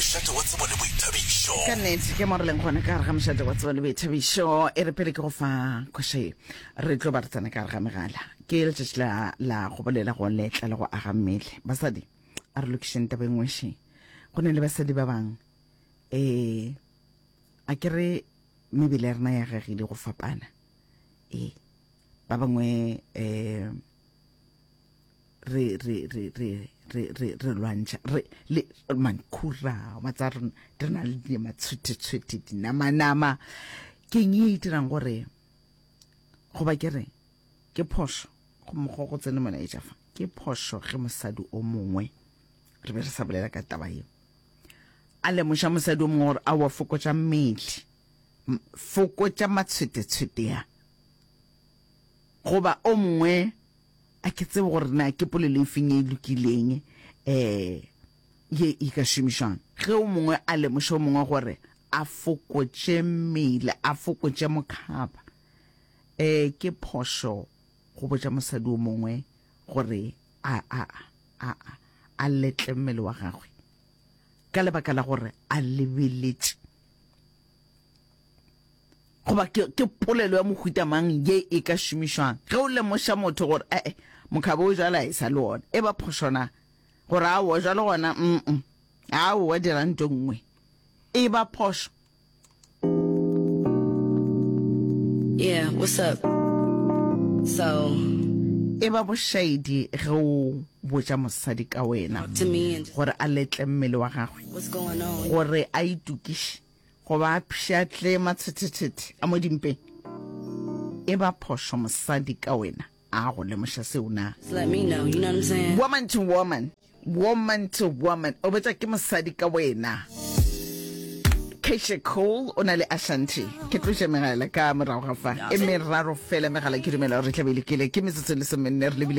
Mošate wa tsebo le boithabišo. Ka nnete, ke mo re leng gone ka gare ga mošate wa tsebo le boithabišo. E re pele ke go fa khoša ye, re tlo ba re tsena ka gare ga megala. Ke letšatši la, la go bolela go letla le go aga mmele. Basadi, a re lokišeng taba e nngwe še. Go ne le basadi ba bang, ee, a ke re mebele ya rena ya gagile go fapana. Ee, ba bangwe um re re re re re re re lwantšha re le mankhura wa tsa re re na le di matshwethetshwethe dinamanama ke eng e dirang gore goba ke re ke phoso go mokgwa go tsene molaetša fa ke phoso ge mosadi o mongwe re be re sa bolela ka taba yeo a lemoša mosadi o mongwe gore a wa fokotša mmele fokotša matshwethetshwete ya goba o mongwe A ke tsebe gore na ke polelo e feng e e lokileng um ye e ka šomišwang ge o mongwe a lemoša o mongwe gore a fokotše mmele, a fokotše mokhaba. Um ke phošo go botša mosadi o mongwe gore a, a, a, a, a letle mmele wa gagwe ka lebaka la gore a lebeletše. goba ke, ke polelo ya mohuta mang ye e ka šomišwang ge o lemoša motho gore ee mokhaba o jala e sa le ona e ba phošona gore a o jalo gona mm, -mm. a o wa dira nto nngwe e ba phošo yeah what's up so e ba bošaedi ge o botša mosadi ka wena gore a letle mmele wa gagwe gore a itukiše Go ba pšhatle matshethethethe a mo dimpeng. E ba phošo mosadi ka wena a go lemoša seo na? Woman to woman, woman to woman, o betsa ke mosadi ka wena. Keisha Cole o na le Ashanti. Ke tloša megala ka morago ga fa. E meraro fela megala ke dumela gore re tla be le kele. Ke metsotso le somenne re lebile